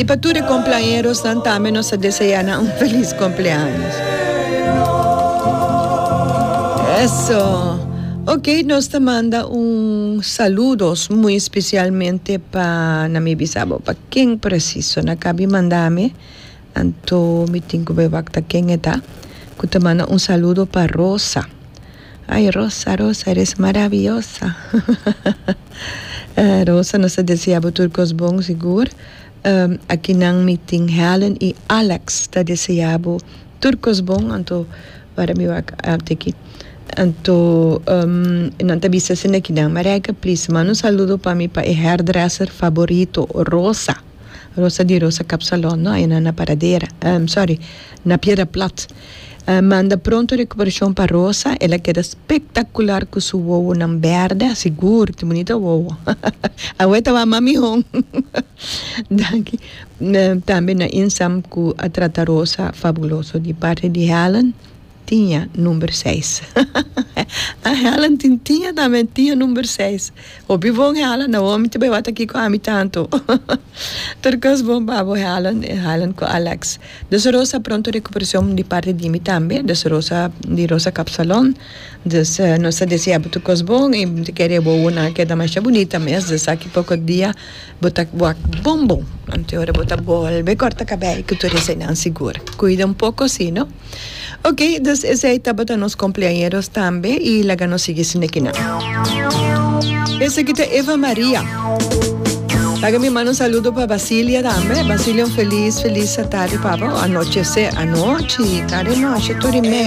I pa tur e komplañerosnan tambe nos ta deseá nan un felis kompleaños. Eso! Ok, nos ta manda un saludos muy especialmente pa, na mi bisa bo pa ken presiso na kabi manda mi, anto mi tin ku be wak ta ken e ta, ku ta manda un saludo pa Rosa. Ay Rosa Rosa eres maraviyosa hahaha Rosa nos ta deseabo tur kos bon sigur aki nan mi tin Helen y Alex ta deseabo tur kos bon anto wara mi wak te aki anto nan ta bisa esei na kinan Marijke please man un saludo pa mi pa e hairdresser favorito Rosa. Rosa di Rosa Kapsalon no ayunan na Paradera sorry na Piedra Plat manda pronto recuperashon pa Rosa el a keda spectacular cu su wowonan berde asigur tin bunita wowo awe tabatin mami hon danki tambe na Insam cu a trata Rosa fabuloso di parte di Helen. Tiña number seis a Helen tin tiña tambe tiña number seis hopi bon Helen Naomi ta bay wata aki cu ami tanto tur cos bon pa bo Helen Helen cu Alex dus Rosa pronto recuperacion di parte di mi tambe dus Rosa di Rosa Kapsalon dus nos ta deseabo tur cos bon y ta kere bobonan a keda masha bunita mes dus aki poco dia Bo ta wak bon bon, anto ora bo ta bolbe kòrta kabei ku tur eseinan sigur. Kuida un poko si no. Ok, dus esei tabata nos kompleañeros tambe i laga nos sigui sinekinan. Esaki ta Eva Maria. Laga mi manda un saludo pa Basilia tambe. Basilia un felis felis atardi papa, anochese anochi, tarde nochi tur i mei.